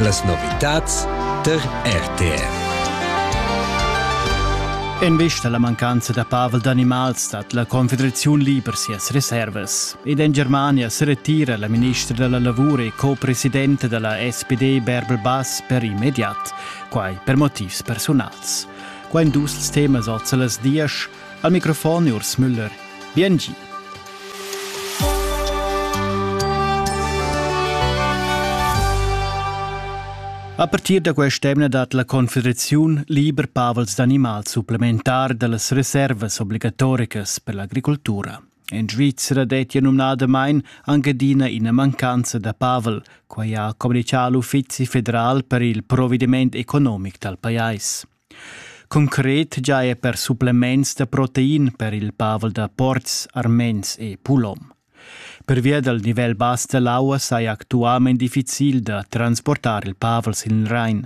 Las novitads tar RTR. En vista alla mancanza da pavel d'animals stat la Confederaziun liber sias reservas. Ed en Germania se retira la ministra della lavoro e co-presidente della SPD Bärbel Bass per immediat, quai per motivs personals. Qua in dus temas oz las dias, Al microfon Urs Müller. Biengi. A partir da quest'emna dat la Confederaziun liber pavels d'animal supplementar da las reservas obligatoricas per l'agricultura. En Svizzera dettia numnadamain anc adina ina mancanza da pavel, quai ha communichà l'Uffizi federal per il provediment economic dal pajais. Concret giaja per supplements da protein per il pavel da portgs armens e pulom. Pervia dal nivel bass da l'aua saja actualmain difficil da transportar il pavel sin il Rain.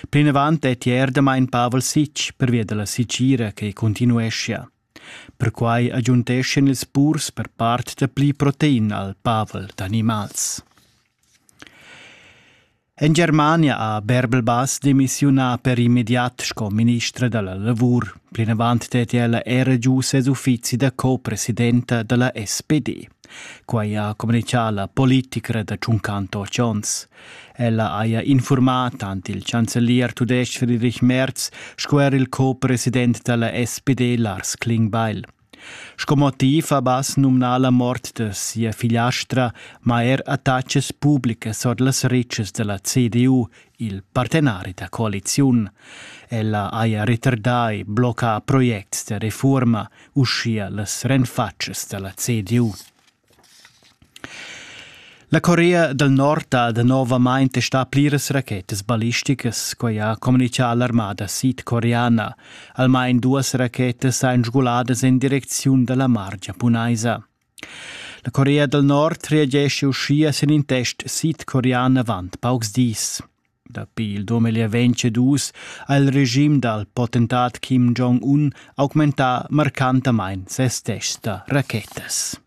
Plinavant è ier damain pavel sitg pervia da la sitgira che continueschia. Perquai agiunteschan ils purs per part da pli protein al pavel d'animals. En Germania ha Bärbel-Bass demissiunà per immediat sco ministra da la lavur. Plinavant deti ella era giu ses uffizi da co-presidenta da la SPD. Quai ha communitgà la politicra da Tschuncanto Chons. Ella haja infurmà tant il chancelier tudestg Friedrich Merz sco er il co-president da la SPD Lars Klingbeil. Sco motiv ha Bass numnà la mort da sia figliastra, ma er attachas publicas ord las retschas da la CDU, il partenari da coaliziun. Ella haja retardà e bloccà projects da refurma, uschia las renfatschas da la CDU. La Corea dal Nord ha danovamain testà pliras rachetas ballisticas. Quai ha communitgà l'armada sidcoreana. Almain duas rachetas èn sguladas en direcziun da la mar giapunaisa. La Corea dal Nord reagescha uschia sin in test sidcorean avant paucs dis. Dapi il dumeglier vegn cedus ha il regim dal potentat Kim Jong-un augmentà marcantamain ses tests da rachetas.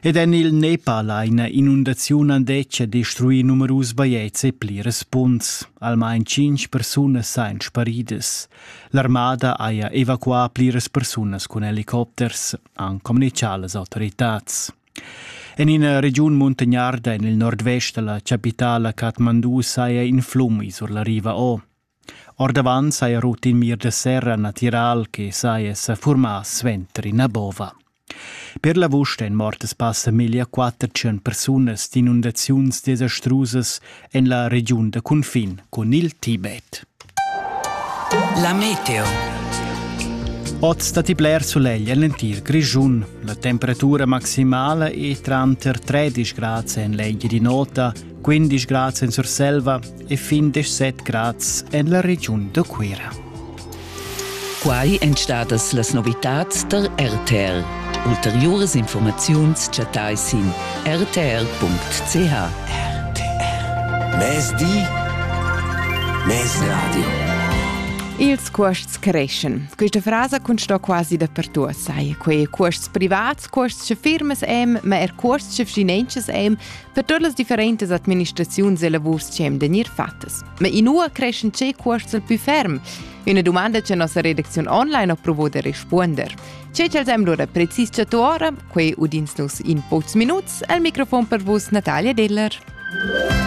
Ed en il Nepal ha ina inundaziun andetg destruì numerus bajetgs e plirs punts. Almain cinq persunas sain sparidas. L'armada haja evacuà pliras persunas cun helicopters, han communitgà las autoritads. En ina regiun muntagnarda en il nordvest da la chapitala Kathmandu saja in flum sur la riva O. Ordavant saja rut in mir da serra natiral che saja sa furmà suenter ina bova. Per l'avust èn mortas passa meglio 400 persunas d'inundaziuns desastrusas en la regiun da cunfin cun il Tibet. La meteo. Oz datti bler sulegl en l'entir Grischun. La temperatura maximala è tranter 13 grads en l'egl di nota, 15 grads en Surselva e fin 17 grads en la regiun da Cuira. Quai èn stadas las novitads tar RTR. Ulteriuras informaziuns chattai sin rtr.ch. RTR. Mezdi. Mezradio. Ils cuosts creschan. Questa frasa consta quasi dapertut, sai. Quei cuosts privats, cuosts che firmas hem, ma er cuosts che finanzas hem Per tuot las differentas administraziuns e lavurs chi hem da gnir fattas. Ma inua creschan tschè cuosts il pü ferm? Üna dumanda cha nossa redacziun online ho provo da respuonder. Tschè ch'els hem lura precis chatto ora, quei udins nus in pochs minuts al microfon per vus Natalia Deller.